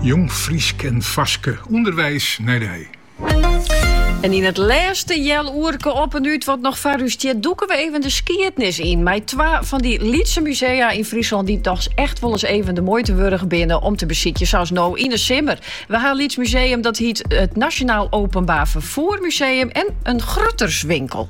Jong Frysk en Faske, ûnderweis nei de hei. En yn it lêste healoerke Op en Ut wat noch foar ús stiet, dûke we even de skiednis yn. Mei twa fan dy lytse musea yn Fryslân dy't dochs echt wolris even de muoite wurdich binne om te besykjen, sa as no yn 'e simmer. We ha in lyts museum dat hjit it Nationaal Openbaar Vervoer Museum en in grutterswinkel.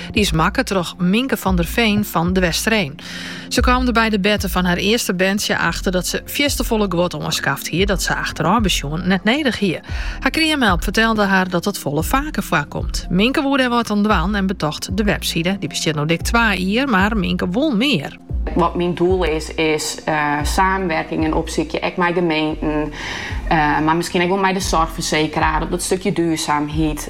Dy is makke troch Minke van der Veen fan De Westereen. Se kaam der by de berte fan har earste berntsje achter dat se fierstefolle guod oanskaft hie dat se achterôf besjoen net nedich hie. Har kreamhelp fertelde har dat dat folle faker foarkomt. Minke woe dêr wat oan dwaan en betocht de webside, dy bestiet no dik twa jier, mar Minke wol mear. Wat myn doel is, is saamwerkingen opsykje, ek mei gemeenten, mar miskien ek wol mei de zorgverzekeraar op dat stukje duurzaamheid.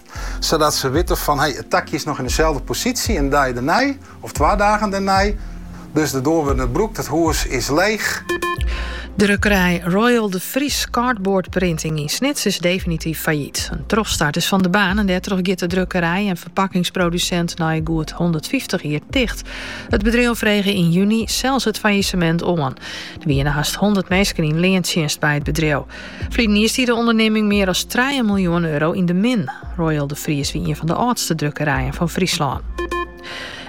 Sadat se witte fan hey, it takje is noch yn deselde posysje in dei dernei of twa dagen dernei. Dus de doar wurdt net brûkt, it hûs is leech. Drukkerij Royal de Vries Cardboard Printing yn Snits is definityf fallyt. In trochstart is fan de baan en dêrtroch giet de drukkerij en ferpakkingsprodusint nei goed 150 jier ticht. It bedriuw frege yn juny sels it fallisemint oan. Der wiene hast 100 minsken yn leantsjinst by it bedriuw. Ferline jier stie de ûndernimming mear as trije miljoen euro yn de min. Royal de Vries wie ien fan de âldste drukkerijen fan Fryslân.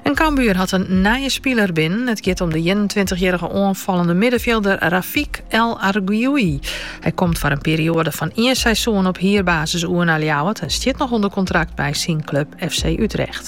En Cambuur hat in nije spiler binnen. It giet om de 21-jierrige oanfallende middenfjilder Rafik El Arguioui. Hy komt foar in perioade fan ien seizoen op hierbasis oer nei Ljouwert en stiet noch ûnder kontrakt by syn klup FC Utrecht.